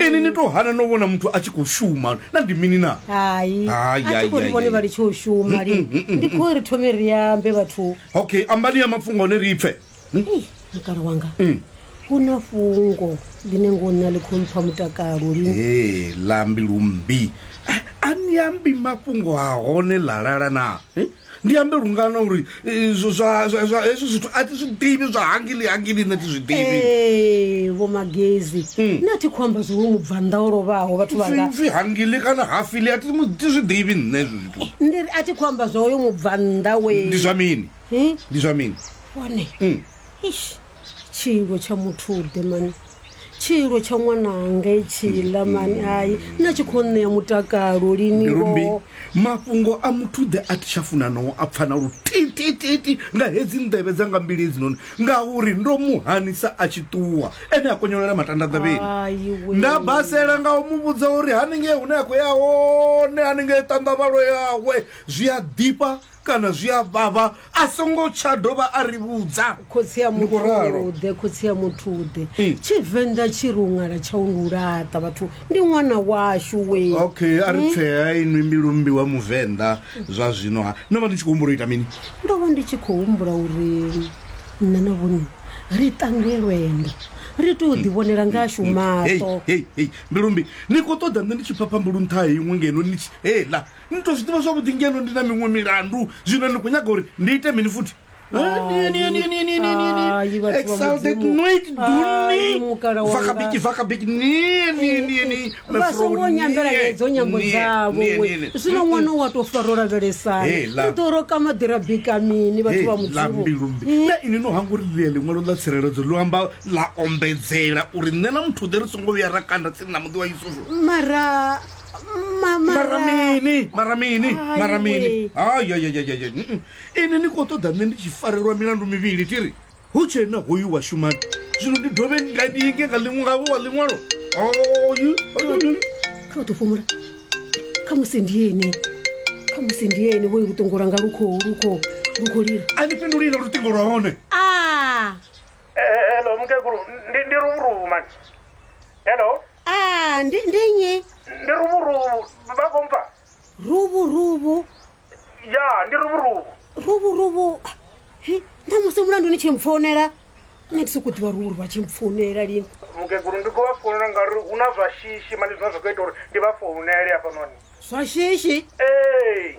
ini ni to hana no vhona muthu a tshi khou shuma na ndi mini na hai Hai, hai, a thikori hai, vhone hai. vha litshe u shuma lini ndi khou ri thome ri ambe vhathu okay ambani ya mafhungo one ri pfe Ei, mukala wanga Mm. hu na fungo ḽine ngo nṋa ḽi khou mpha mutakalo lini e lambi lumbi a ni ambi mafhungo a hone lalala na Eh? ndi ambe lungana uri eh, zwo- zwa- zwa- zwa- hezwi zwithu a ti zwi ḓivhi zwa hangili hangili nṋe ti zwi ḓivhi Ee, vho magezi Hmm. na thi khou amba zwo mubvanḓa o lovhaho vhathu vhanga pfi hangili kana hafili a ti mu- ti zwi ḓivhi nṋe hezwi zwithu ndi ri a thi khou amba zwa uyo mubvanḓa we ndi zwa mini Eh, ndi zwa mini one Hmm. Eish. tshiilwo tsha muthude mani tshiilwo tsha ṅwananga itshiḽa mani hai nna tshi khou ṋea mutakalo lini mbilumbi ngoho mafhungo a muthuḓe a thi tsha funa no a pfana lutitititi nga hedzi nḓevhe dza nga mbili hedzinoni ngauri ndo mu hanisa a tshi ṱuwa ene a konyolela matanda nḓevheni Hai we. nda basela nga u mu vhudza uri haningei hune a khou ya hone haningei ṱanḓavhalo yawe zwi a ḓifha kana zwi a vhavha a songo tsha dovha a ri vhudza khotsi ya Ndi khou ralo. muthuḓe khotsi ya muthuḓe Ee. tshivenḓa tshi ri u ṅala tsha u ndi u laṱa vhathu ndi ṅwana washu we okay a ri tsea inwi mbilumbi wa muvenḓa zwa zwino ha no vha ni tshi khou humbula u ita mini ndo vha ndi tshi khou humbula uri nṋe na vhone ri tange lwendo ri tou ḓivhonela ngashu Hei, maṱo hei, hei, mbilumbi ni khou ṱoḓa nṋe ndi tshi phapha mbulu nṱha ha iṅwe ngeno ni tshi hela ni to zwi ḓivha zwavhuḓi ngeno ndi na miṅwe milandu zwino ni khou nyaga uri ndi ite mini futhi vasongo nyambela hedzo nyambo dzavo zwino ṅwana wa to faro lavhelesana to roka maḓira bika mini vhathu vha mudzivolambilumbi mm. na ini no hanga uri ḽia ḽiṅwalo ḽa tsireledzo lu amba ḽa ombedzela uri nṋe na muthu ḓe ri songo vhuya ra kanda tsini na muḓi wa yusufu mara mara mini mara mini mara mini ayayayaya ini ni khou ṱoḓa nṋe ndi tshi farelwa milandu mivhili ti ri hu tshe na hoyu wa shumani zwino ndi dovhe nga ndi inge nga ḽiṅwe ngavho wa ḽiṅwalo kha u ḓo fhumula kha musi ndi ene kha musi ndi ene hoyu luṱingo lwanga lu khou lu khou lu khou lila a ni fhindulile luṱingo lwa hone a hello mukegulu ndi ndi ruvhuruvu mani hello Ah, ndi ndi nnyi? ndi ruvhuruvu vha khou mpfa Rubu rubu. ya ndi ruvhuruvu Rubu rubu. Hi, nda musi mulandu ni tshi mpfonela. Nṋe ndi sokou ḓivha rubu rubu a tshi mpfonela lini. mukegulu ndi khou vha founela ngauri hu na zwa shishi mani zwine zwa khou ita uri ndi vha founele hafhanoni Zwa shishi. ee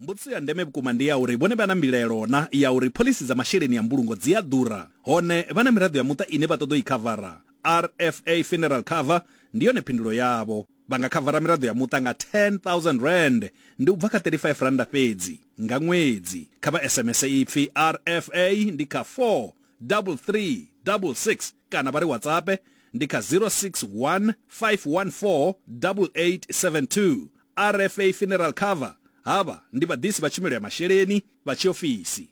Mbudziso ya ndeme vhukuma ndi ya uri vhone vha na mbilaelo na ya uri phoḽisi dza masheleni a mbulungo dzi a ḓura, hone vha na miraḓo ya muṱa ine vha ṱoḓa u i khavara. RFA Funeral Cover ndi yone phindulo yavho. Vha nga khavara miraḓo ya muṱa nga R10,000, ndi u bva kha R35 fhedzi, nga ṅwedzi. Kha vha SMS ipfi RFA ndi kha 43366 kana vha ri WhatsApp ndi kha 061 514 8872. RFA Funeral Cover, Havha ndi vhaḓisi vha tshumelo ya masheleni vha tshiofisi.